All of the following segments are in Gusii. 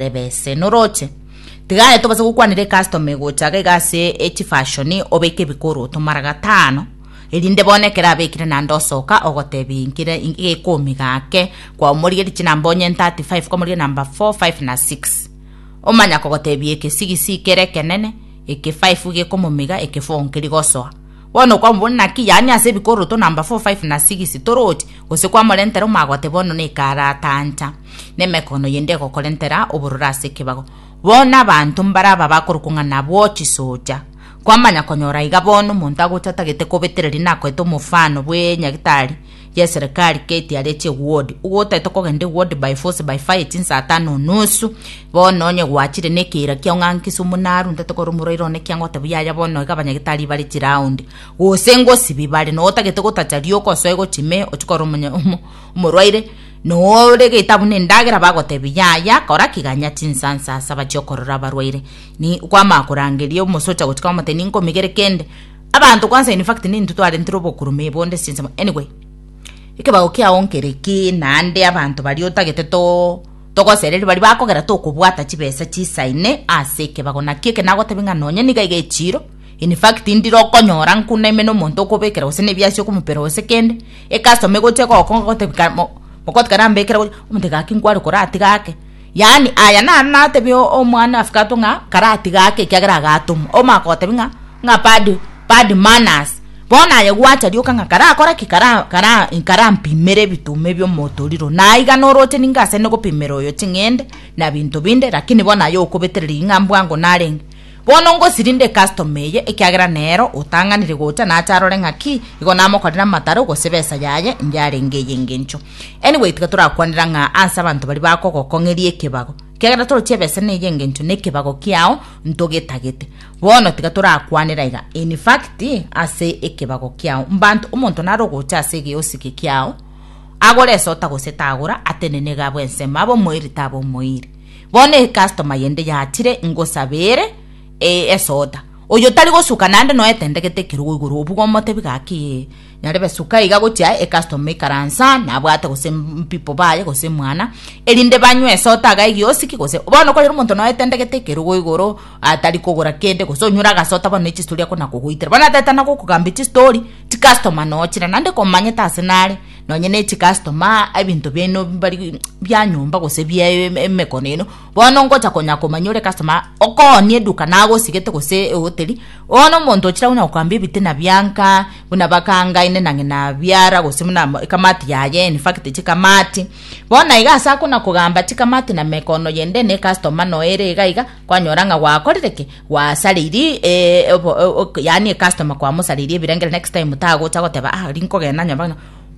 Reba ese noroche. Tiga aye tobase gokwanera ecustomer egocha iga iga ase echifashoni obeke ebikoroto mara gatano erinde bono ekero abekire naende osoka ogotebi nkire gekomi gake kwaumorigeriti namba onye 35 kwamorigeria namba 4 5 na 6 omanya kogotebia ekesigisi kere ekenene eke 5 gekomomiga eke 4 nkeri gosoa Bono okwamobona naki, yaani ase ebikororoto namba four, five, na six, toroti, gose kwamorentera omoagote bono nekaaratancha, na emekono yende egokorentera obororo ase ekebago. Bono abanto mbare aba bakorokwa ng'a nabwo chisocha. Kwamanya konyora iga bono omonto agocha atagete kobetereria nakoete omofano bw'enyagitari, yeserekari gate aria eche ward igo otaete kogenda eward by force by fire chinsa tano nusu bono onye gwachire nekeira kiao ng'a nki sumu naru ntate kore omorwaire one ki agotebi yaya bono iga abanyagitari bare chiround gose ngosibi bare no otagete gotacha rioka osoe gochi me ochie kore omonya omo omorwaire no oregete abwo na endagera bagotebi yaya kora ki ganya chinsa nsa saba chio korora abarwaire ni kwama korangeria omosocha gochika omotebia ninkomigere kende Abanto kwansa in fact nintwe twarentire obokurume bonde ase chinsemo anyway ekebago kiao nkere ki naende abanto baria otagete to togosereri baria bakogera tokobwata chibesa chisaine ase ekebago naki eke nagotebia ng'a nonye niga iga echiiro in fact ndire okonyora nku naime na omonto okobekera gose na ebiasi okomopera gose kende e customer egocha egokong'a egotebia kare mo mogote kare nambekere omonto gaki nkware koratiga ake. Yaani, aya naro natebie omwana afikato ng'a karatiga ake ekiagera agatomwa. Omaka gotebia ng'a, ng'a bad, bad manners. Bono aye gwacha rioka ng'a karakore ki? Kara, kara, karampimere ebituma ebio motoriro. Naiga noroche ninga asende gopimera oyo ching'ende na binto binde, lakini bono aye okobetereria ing'a bwango narenge. Bono ngosirinde customer eye, ekiagera nero otang'anire gocha nache arore ng'aki igo namokorire amataro gose besa yaye inge arenge eye engencho. Anyway tiga torakwanera ng'a anse abanto baria bakogokong'eria ekebago, ekiagera toroche ebesa na eye engencho nekebago kiao ntogetagete. Bono tiga torakwanere aiga, in fact ase ekebago kiao mbanto omonto nare ogocha ase egeosiki kiao agore esota gose tagora, atenene iga abwe ensemo abe omoiri tabe omoiri. Bono ecustoma yende yachire ngosabe ere eh, esoda. Oyo tari gosuka nande noe tendegete ekerogo igoro obuga omotebi gaki eh, nyarebe suka iga gochia aye ecustoma ikaransa nabwate gose mpipo baye gose mwana erinde banywe esota aga egiosiki gose bono korera omonto noe tendegete ekerogo igoro atari kogora kende gose onyure agasota bono ne chistori akona kogoitera bono atetana gokogambia chistori chicustoma nochire nande komanyete ase nare Nonye ne chicustoma, ebinto biaino mbari bia nyomba gose bia em- emekono eno, bono ngocha konya komanya ore customer okoonie eduka nagosigete gose ehoteri, bono omonto ochire agwo na gokambia ebitina bianka, buna bakangaine na ng'ina biara gose buna ama ekamati yaye in fact chikamati. Bono na iga ase akona kogamba chikamati na mekono yende ne ecustomer noyo ere iga iga, Kwanyora ng'a gwakorire ki? Gwasareiri eh, obo- o- o- yaani ecustomer kwamosareiri ebirengeri next time tagocha goteba ah ri nkogenda nyomba ng'a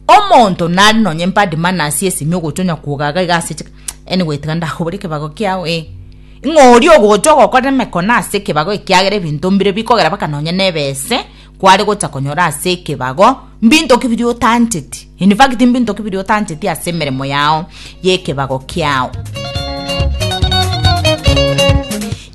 omonto nari nonye bad manners esimi ogocha onya kogaga iga ase chik anyway tiga ndakobore ekebago kiao eh ng'a oria ogocha ogokorera emekona ase ekebago ekiagera ebinto mbire bikogera mpaka nonye nebe ese kware gocha konyora ase ekebago mbinto ki biria otancheti, in fact mbinto ki biria otancheti ase emeremo yao y'ekebago kiao.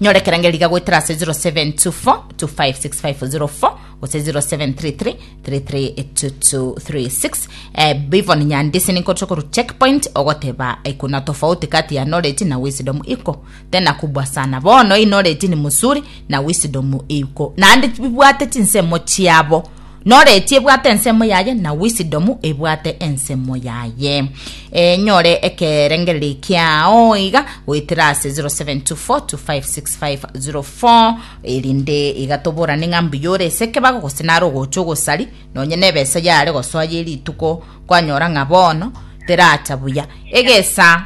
nyora ekerangeri riga goetera ase 0724256504 gose 07333336 eh, bivon nyandise ninkotokorwa checkpoint ogoteba ikuna tofauti kati ya knowledge na wisdom iko Tena kubua sana bono inoreti ni musuri na wisdom eyuko naende bibwate chinsemo chiabo noreti ebwate ensemo yaye na wisdom ebwate ensemo yaye e, nyore ekerengereri kiao iga goetera ase 0724256504 erinde iga toborane ng'a mbuya ore ase ekebago gose nare ogocha ogosari nonye na ebesa yare gosoa ye rituko kwanyora ng'a bono teracha buya egesa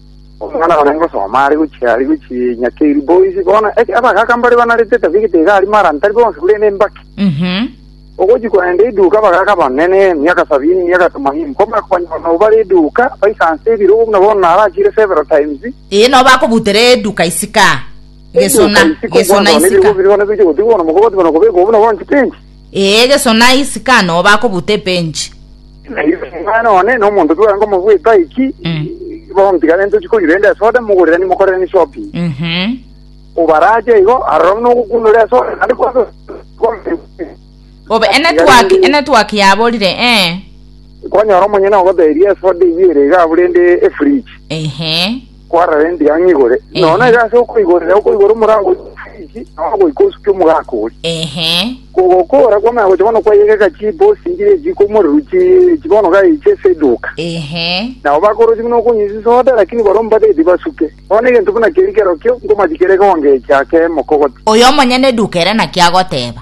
Omwana one ngosoma are gochia are gochia Nyakeri boys bono eke abagaka mbare banarete etabigete iga aria mara ntari bonsi korende embaki. Mhm. Ogochi korenda eduka abagaka abanene emiaka sabini emiaka tomanini komara konyora nabo bare eduka baisanse ebirogo buna bono narachire several times. Ee no bakobutera eduka isika. Gesona, Eduka isiko gesona mwana one ebirogo isika. bire bono bigochia gotigwa bono mogobatwa na kobekwa buna bono chipenji. Ee, Yeso na isiko aa nobo akobuta ebench. Na inse omwana one na omonto tware nkomobweka aiki, Mm. bontigane ntochi konywa rende esoda, mogorirani mokorerani shopping. Mhm. Obarache igo, aroro buna ogokundora esoda, naende kwabe Obe enetwork, enetwork yaborire, eh. kwanyora omonyene ogoteria esoda eyio ere iga abwo rende efridge. Ehe. kwarara endiga ng'a igore, Ehe. nonya iga ase okoigorera okoigora omorango oria ofiriki, nonya goika osukia omogaka oria. Ehe. Kogokora kwamanya gocha bono kwayegeka chibosi nchiria echiiko omorero chi- chi bono gai chieseduka. Ehe. Nabo bakorosia buna okonywa chisoda, lakini baria omobatebi tibasuke. Bono egento buna keri kerokio, nkomati kere ekewango ekia kemokogoti. Oyo omonyene eduka ere naki agoteba,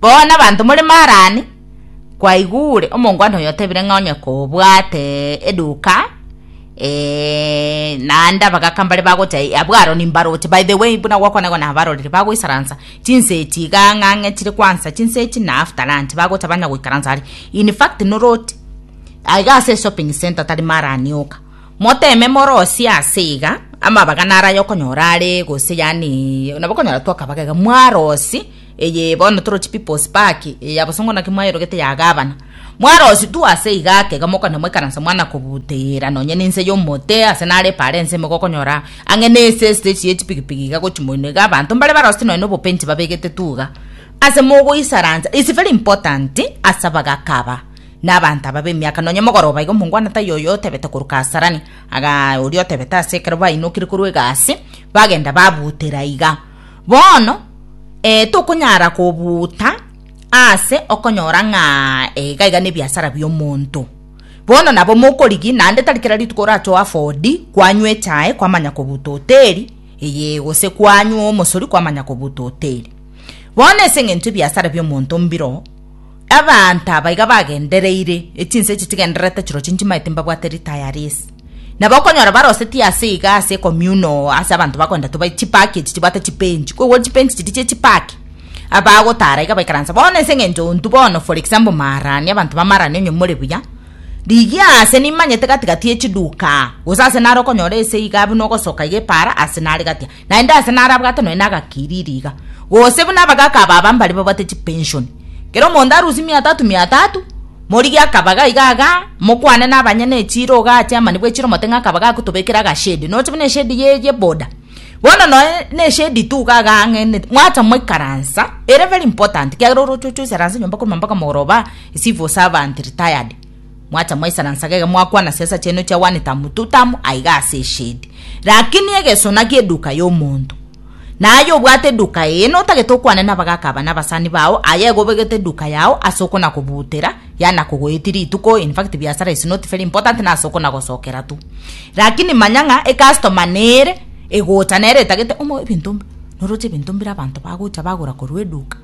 Bono abanto more Marani kwaigure omongwana oyo otebire ng'a onye kobwate eduka eh, naende abagaka mbare bagocha eh, abwo Aroni mbaroche by the way buna gwakonegwa na abaroreri bagoisaransa chinse echi iga ng'ang'e chire kwansa chinse echi na after lunch bagocha banya goikaransa are in fact noroti aiga ase shopping center tari Marani oka moteme morosie ase iga amabaga naraye okonyora are gose yani nabo okonyora twakabagega mwarosi Eye bono toroche People's Park, eye yabosongwa naki mwayorogete ya gavana. Mwarositwe ase iga ake iga mokonywa moikaransa mwana kobuteera nonye nense y'omote ase nare epaara ense ime gokonyora ang'e nese estage ye chipigipigi iga gochi moino iga abanto mbare barosete nonye nobopensi babegete tu iga ase mogoisaransa is very important ase abagaka aba na abanto aba b'emiaka nonye mogoroba iga omongwana taiyo oyo otebete korwa Kasarani aga oria otebete ase ekero bainokire korwa egasi bagenda babutera iga Bono eh, tokonyara kobuuta ase okonyora ng'a eh, iga iga nebiasara bi'omonto. Bono nabo mokorigi, naende tari kera rituko orache oafodi kwanywa echae kwamanya kobuuta hoteli, eye gose kwanywa omosori kwamanya kobuuta hoteli. Bono ase eng'encho ebiasara bi'omonto mbiro, Abanto aba iga bagendereire, ne chinsa echi chigendererete chirochio nchimaete imbabwate ritaya ri'ense. Nabo okonyora barosetie ase iga ase ecommunal ase abanto bakoenda tobae chipaki echi chibwate chipench, koigwa chipench chiria chie chipaki, abagotara iga baikaranse bono ase eng'encho ontwe bono for example maarani abanto ba maarani onye more buya, rigia ase nimanyete gati gati ye chiduka aa, gose ase nare okonyora ase iga buna ogosoka iga epaara ase nare gati aa. Naende aase narabwate nonya nagakiriri iga, gose buna abagaaka ababa mbare babwate chipenshoni, kera omonto arusie mia tatu mia tatu, morigi akaba gaiga iga, mokwane nabanyene echiira iga ache amani bw'echiira omote ng'a akaba gagotobekera agashedi, noche buna eshedi ye ye boda. Bono noe neshedi tu iga iga ang'e ne mwacha moikaransa, ere very important, ekiagera oroche oche oisaranse nyomba korwa mambaka mogoroba, ecivil servant retired. Mwacha mwaisaransage iga mwakwana siasa chiaino chia one tamu two tamu aiga ase eshedi. Rakini egeso naki eduka y'omonto. Na aye obwate eduka eye notagete okwane nabagaka aba nabasani bao aye igo obegete eduka yao ase okona kobutera yana kogoeti rituko in fact biasara is not very important na ase okona gosokera tu. Rakini manya ng'a ecustomer nere egocha nere etagete omo ebinto noroche ebinto mbire abanto bagocha bagora korwa eduka.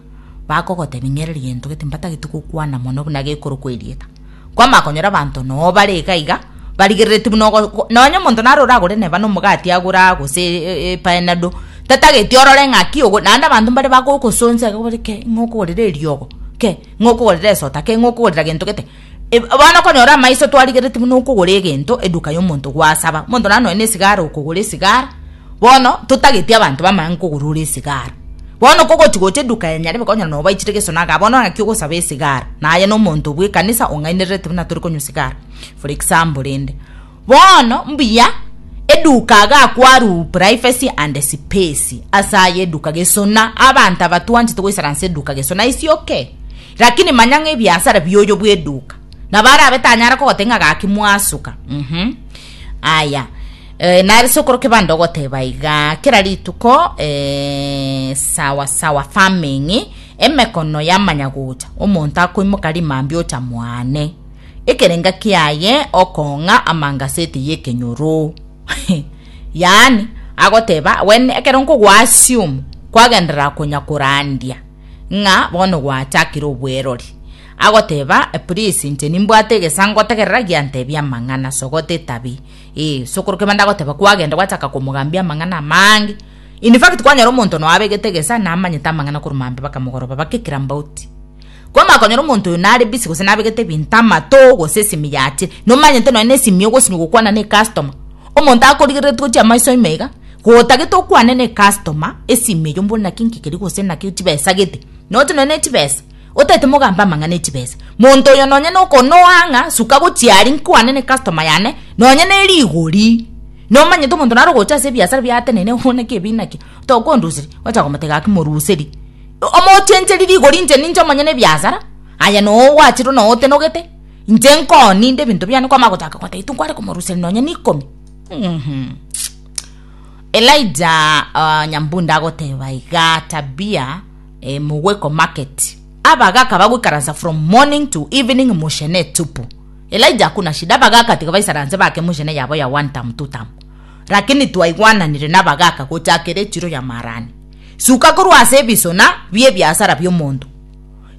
bakogotebia ng'ereri gento gete mbatageti gokwana mono buna gekorokwa erieta. Kwamanya konyora abanto noo bare iga iga, barigereretie buna ogo nonye omonto naro oragore neba nomogati agora gose epanado, tatageti orore ng'aki ogo naende abanto mbare bagogosonsa iga bare kei ng'okogorera eriogo, kei ng'okogorera esota, kei ng'okogorera gento gete. Bono okonyora amaiso twarigereti buna okogora egento eduka yomonto gwasaba omonto naye nonya na esigara okogora esigara bono totageti abanto bamanye kogora ore esigara bono okogochi gocha eduka ya nyarebe okonyora nonya obaichire egesona igaa bono ng'aki ogosaba esigara naye nomonto bwekanisa ong'ainerereti buna torikonywa esigara for example rende. Bono mbuya, eduka agakw'aru privacy and space ase aye eduka gesona abanto aba twanchete goisara nse eduka gesona isi oke lakini manya ng'a ebiasara bioyo bw'eduka nabo arabe tanyara kogotebia ng'a gaki mwasuka mhm aya eh, nare ase okoroka ebande ogoteba igaa kera rituko eh, sawa sawa farming emekono yamanya gocha omonto akoimoka rimambia ocha mwane Ekerenga kiaye okong'a amangaseti y'ekenyoro. Yaani, agoteba, When ekero nkogoassume kwagenderera konya korandia ng'a bono gwachakire obwerori, agoteba, Please, inche nimbwate egesaa ngotegerera giantebia amang'ana, sogota etabi. Ee, sokoro kebanda agoteba kwagenda gwachaka komogambia amang'ana amange. In fact, kwanyora omonto noabegete egesaa namanyete amang'ana korwa mambia bakamogoroba, bakekira mbauti. Kwamanya konyora omonto oyo nare busy gose nabegete ebinto amato gose esimi yache nomanyete nonya nesimi ogosinywa gokwana ne customer omonto akorigereretie gochia amaiso ime iga gotagete okwane ne customer esimi eywo mbwenu naki nki keria gose naki chibesa gete nonya note ne chibesa otaete mogambe amang'ana echibesa monto oyo nonya nokonoa ng'a suka gochia aria nkwane ne customer yane nonya ne rigori nomanyete omonto nare ogocha ase ebiasara biateneine bono naki ebi naki tokondusirie ogocha komoteba gaki moruseri. Omochencheri rigori inche ninche omonyene ebiasara, aye nowachirwe notenogete, inche nkoo ninde ebinto biane kwamanya gochaka gotebi tinkware komoruseria nonya neikomi mhum. Elijah uh nyambunde agoteba iga Tabia eh mogweko market abagaka bagoikaransa from morning to evening mochene etupu Elijah hakuna shida abagaka tiga baisaranse bake mochene yabo ya one term two term lakini twaigwananire nabagaka gochakera echiro ya maarani. Suka korwa ase ebisona bi'ebiasara bi'omonto.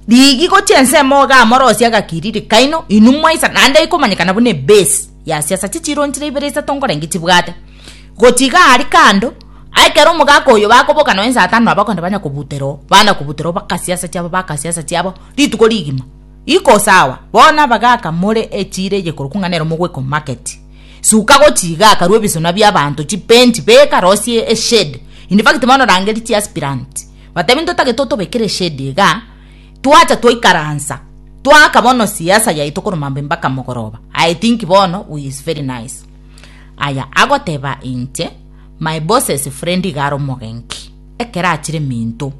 Riigi gochia ensemo iga amorosie agakiriri kaino, inwe mwaisa, naende ikomanyekana buna ebase ya siasa chichironchire ibere isato nkorenge chibwate. Gochia iga aria kando, ekero omogaka oyo bakoboka nonya saa tano nabo okonyora banya kobutera oo, bana kobutera oo baka siasa chiabo baka siasa chiabo rituko rigima. Iko sawa, bono abagaka more echiira eye korokwa ng'a nere mogweka omomarket. Suka gochiiga akarue ebisuna bi'abaanto, chipench, beka rosie eshade. In fact bono rangeria chiaspirant batebi ntotagete otobekere eshade iga, twacha twaikaransa twaaka bono siasa yaito korwa mambia mpaka mogoroba. I think bono we is very nice. Aya agoteba inche, my boss's friend iga are omogenki ekero achire minto,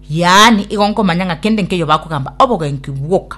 yaani igo nkomanya ng'a kende nkeyo bakogamba obogenki bwoka.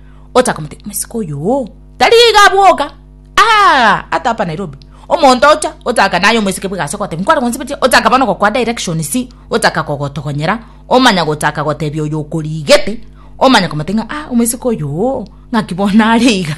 ochakomoteebia, Omosike oyo oo tari iga bwoka, aa, ata hapa Nairobi. Omonto ocha, ochaka naye omosike bwe egasi ogoteebia, Nkware gonsibetie, ochaka bono gokwa directions, ochaka kogotogonyera, omanya gochaka goteebia oyo okoriigete, omanya komoteebia ng'a, aa, omosike oyo oo, ng'aki bono are iga,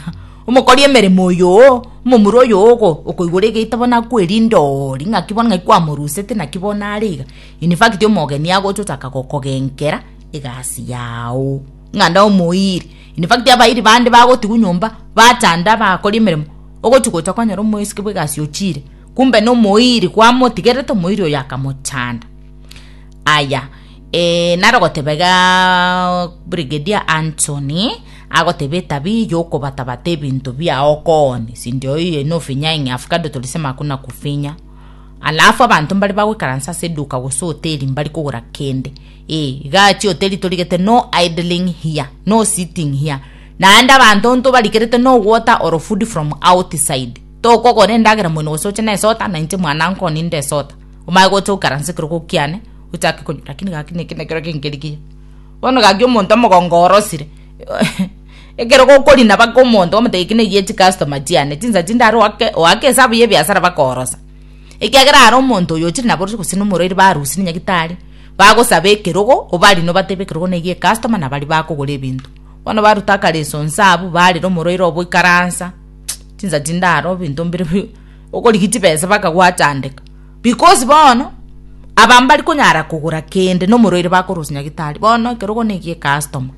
omokori emeremo oyo oo, omomura oyo oo okoigora egeita bono akwerinde oo, ri ng'aki bono ng'aki kwamorusete naki bono are iga. In fact omogeni agocha ochaka gokogenkera egasi yao. ng'a nomoiri. In fact abairi bande bagotigwa nyomba batanda bakori emeremo, ogochi gocha kwanyora omoiseke bwa egasi ochire kumbe nomoiri kwamotigerete omoiri oyo akamochanda. Aya naro ogoteba igaa Brigadier Anthony agoteba etabia yokobatabata ebinto biao kooni sindio oye nofinya ing'ee avocado tolisema hakuna kufinya alafu abanto mbare bagoikaransa ase eduka gose hoteli mbari kogora kende. Ee, gati oteri torigete no idling here, no sitting here, naende abanto ntobarigerete no water or food from outside. Tokogora endagera moino gose oche nesota, na inche mwananko ninde esota. Omanye gocha okaranse ekero gokiane, ochake konywa, lakini gaki neke nekero kenkerigia. Bono gaki omonto omogongo orosire, ekero gokorina baka omonto omotebia eki neyie chicustomer chiane, chinsa chinde are oake oake esabu yebiasara bakoorosa. Ekiagera are omonto oyo ochire naborosio gose nomorwaire barusia na nyagitari. Bagosaba ekerogo, obari nobatebe ekerogo negi ecustoma na bari bakogora ebinto. Bono baruta akare esonsa abu barera omoroire obo ikaransa. Chinsa chindaro ebinto mbire bi okorigi chibesa baka gwachandeka. Because bono aba mbari konyara kogora kende nomoroire bakorosia nyagitari. Bono ekerogo negi ecustoma.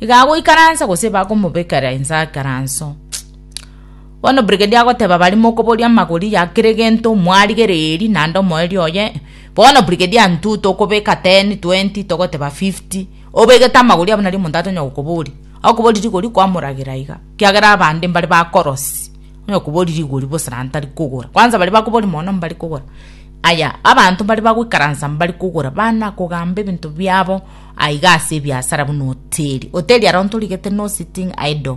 Igago ikaransa gose bakomobekera ensa akaranso. Bono Brigedia agoteba baria mokoboria amagori ya kera egento mwarigereria eeri naende omoerio oye. Bono Brigedia intwe tokobeka ten, twenti, togoteba fifty, obegete amagori abwo nari omonto atonyara gokoboria. Akoboria rigori kwamoragera iga, kiagera abande mbare bakorosi, onye okoboria rigori bosa naende tari kogora. Kwanza baria bakoboria mono mbari kogora. Aya abanto mbare bagoikaransa mbari kogora bana kogamba ebinto biabo aiga ase ebiasara buna hoteli. Hoteli aro ntorigete no sitting idle.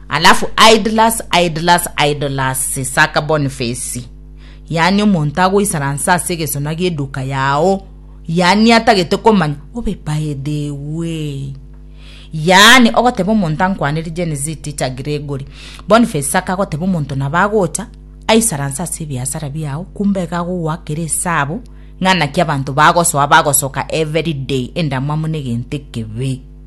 Alafu idlers idlers idlers saka Boniface yaani omonto agoisaransa ase egesona gieduka yao yaani atagete komanya obe by the way yaani ogoteba omonto ankwanere Gen Z teacher Gregory Boniface saka agoteba omonto nabo agocha aisaransa ase ebiasara biao kumbe iga agogoakera esabu ng'a naki abanto bagosoa bagosoka every day endamwamu negento ekebe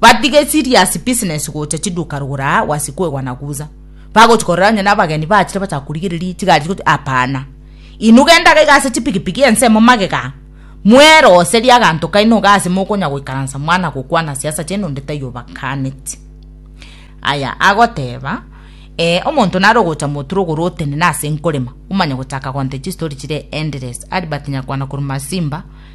Batige serious business gocha chiduka rugura wasi kwegwa na guza. Bagochi korora onye nabageni bachire bachaka kurigereria chigari chigochi apana. Inu genda gaiga ase chipigipigi ensemo magega. Mweroserie aganto kaino iga ase mokonya goikaransa mwana gokwana siasa chiaino onde taiyo obakaneti. Aya agoteba eh omonto nare ogocha motura ogoro otenene ase nkorema omanye gochaka gonte chistory chire endless. Albert Nyakwana korwa Masimba.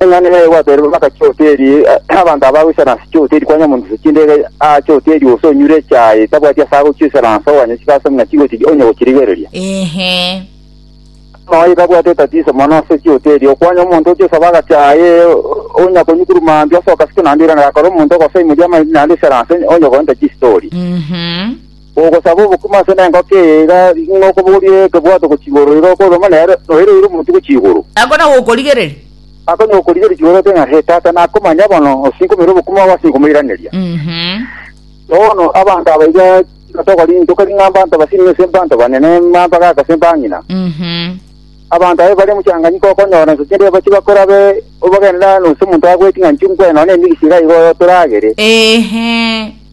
Eng'ana yaye gwatera baka chihoteli, abanto aba goisana ase chihoteli kwanywa monto chindege aa chihoteli gose onyure echae tabwati ase agochiisana ase oganya chigaso ng'a chigochi onye gochirigereria. Ehe. Noyo tabwate etatiso mono ase chihoteli okwanywa omonto ochiosaba agachae onya konyukuru mambia ase okasike naende irana gakora omonto ogosaimoria amaiti naende isana ase onye goenta chistori. Mhm. Bogosaba obokima ase nengoko eye iga ng'a okoboria ekebwato gochika oroiri roko oroma nere noire oire omonto gochia igoro. Nako na gokorigereria. Akonywa gokorigereria igoro ate ng'a, He, Tata, nakomanya bono, osinkomeire obokima bwabo ase nkomoiraneria. Bono abanto aba iga nigo tokori, ntokori ng'a mbanto basinimi ase mbanto banene, mambagaaka ase mbang'ina. Abanto aba bare mochanganyiko okonyora ense chinde bache bakorabe obogenera, nonsi omonto agoeti ng'a nchungue nonya emegisi iga igo oyotoragere.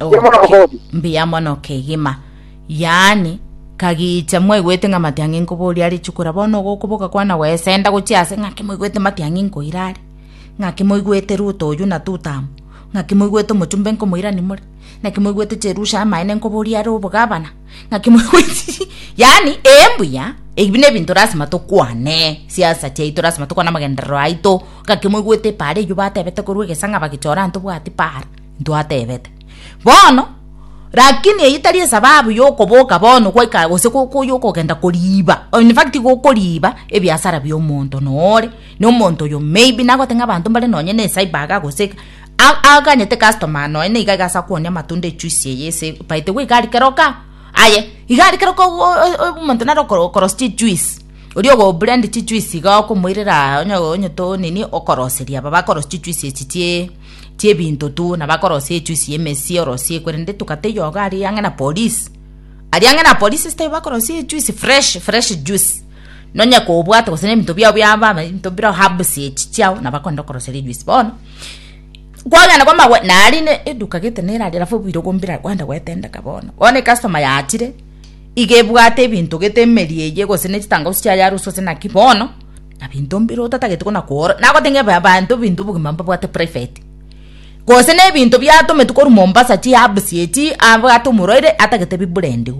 Mbuya mono Oke- Godi. mbuya mono kegima yaani kagicha mwaigwete ng'a matiang'i nkoboria are chukura bono igo okoboka kwana gwesenda gochia ase ng'aki moigwete matiang'i nkoira are ng'aki moigwete ruto oyio na tutamu ng'aki moigwete omochumbe nkomoirani more naki moigwete cherusha amaene nkoboria are obogabana naki moigweti yaani ee mbuya ebi nebinto lasima tokwane siasa chiaito lasima tokwane amagenderero aito ng'aki moigwete paara eyio batebete korwa egesa ng'a bagechora ntobwati paara Ntwateebete bono, Lakini eyio tari esababu y'okoboka bono gwaika gose y'okogenda koriiba, in fact gokoriiba ebiasara bi'omonto nore nomonto oyo maybe nagoteba ng'a abanto mbare nonye na ecyber iga gose iga, aganyete customer nonya nigo iga ase akooni amatunda echuisi eye ase by the way iga aria keroka, aye iga aria keroka omonto nare okorosia chichuisi, oria ogoburend chichuisi iga okomoirera onye onye to nini okoroseria aba bakorosia chichuisi echi chie. chiebinto tu na bakorosia echuisi y'emesie orosie korende tokata eyogo aria ang'e na polisi aria ang'e na polisi sitari bakorosia echuisi fresh fresh juice nonya kobwate gose na ebinto biabo biaba ebinto bire herbs echi chiao nabo bakorenda okoroseria ejuice bono kwagenda kwa amagwe nari ne eduka gete nera aria alafu obwire obwo mbira kwenda gwetendeka bono bono ekastoma yachire iga ebwate ebinto gete emerie eye gose ne chitangausi chiaye arusia gose naki bono. Na binto mbire otatagete kona koora, nagoteng'ebia abanto ebinto obogima mbabwate private. Gose na ebinto biatometwe korwa Mombasa, chiherbs echi, abwate omorwaire atagete biblendiwe.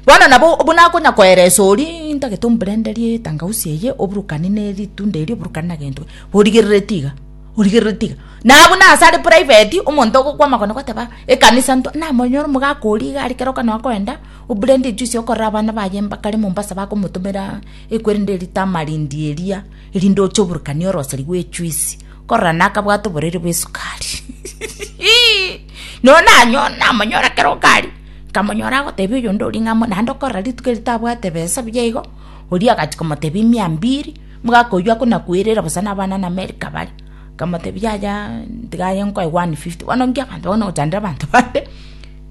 Bono nabo buna akonya koeresa oria ntagete omblenderie etangausi eye, oburukani na eritunda erio, oburukani na gento, origereretie iga, origereretie iga. Na buna ase are private, omonto ogokwa amagena goteba ekanisa ntwa, namonyore omogaka oria iga are kera okana okoenda, oblende ejuice okorera abana baye mbakare Mombasa bakomotomera. Ekwerende ritama rinde eria, erinde oche oburukanie orosari rw'echuisi, korora nakabwate oborere bw'esukari. Nonya nanyo namonyora kero kari, nkamonyora agotebia oyonde oria ng'a amo naende okorora rituko eri tabwate ebesa buya igo, oria agachia komotebia mia mbiri, omogaka oyio akona kwerera bosa na abana na America bare, nkamotebia yaya tiga aye nkoe one fifty. Bono inki abanto bagocha kochandera abanto bande,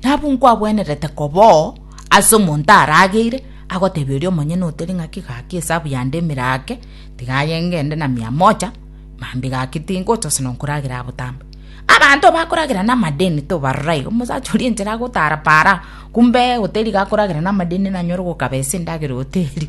nabwo nkwabwenerete koba oo. Ase omonto arageire, agoteebia oria omonyene oteri ng'aki, Gaki esabu yande emere ake, tiga aye ngende na mia moja, mambi gaki tingocha ase nonkoragera abotambe. Abanto bakoragera namadeni tobarora igo, omosacha oria enchera agotara para, kumbe oteri iga akoragera namadeni nanyore gokaba ase endagera ya oteri.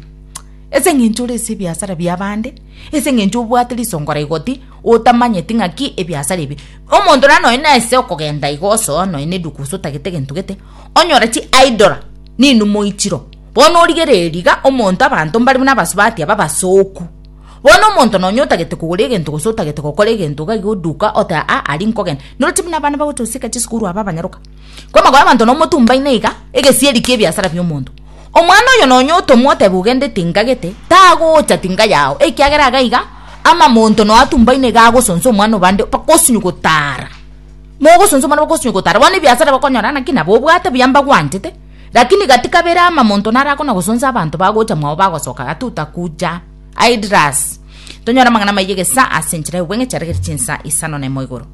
Ase eng'encho ore ase ebiasara bia abande, ase eng'encho obwate risongo la igoti, otamanyeti ng'aki ebiasara ebi. Omonto nonye nase okogenda igo osoa nonye na eduka gose otagete gento gete. onyore chi idol ninumoi chiro bono origere eriga omonto abanto mbare buna abasubati aba basoku bono omonto nonye otagete kogora egento gose otagete gokora egento iga iga oduka ote aa ari nkogenda noro chi buna abana bagocha gosieka chisukuru aba abanyaroka kwa amagoba abanto nomotumbaine iga egesieri kia ebiasara bia omonto omwana oyo nonye otomwa otebe ogende tingagete tagocha tinga yao ekiagera iga iga ama monto noyo atumbaine iga agosonsa omwana obande mpaka osinye gotara. Mogosunswa muna bogosio gotara, bono ebiasara bakonyora naki nabo obwate buya mbagwanchete, lakini gati kabere ama monto naro akona gosunswa abanto bagocha mwao bagosoka gati otakuja. Aidras. Tonyore amang'ana amayia gesa ase enchera y'obweng'e chiaregeire chinsa isano na imo igoro.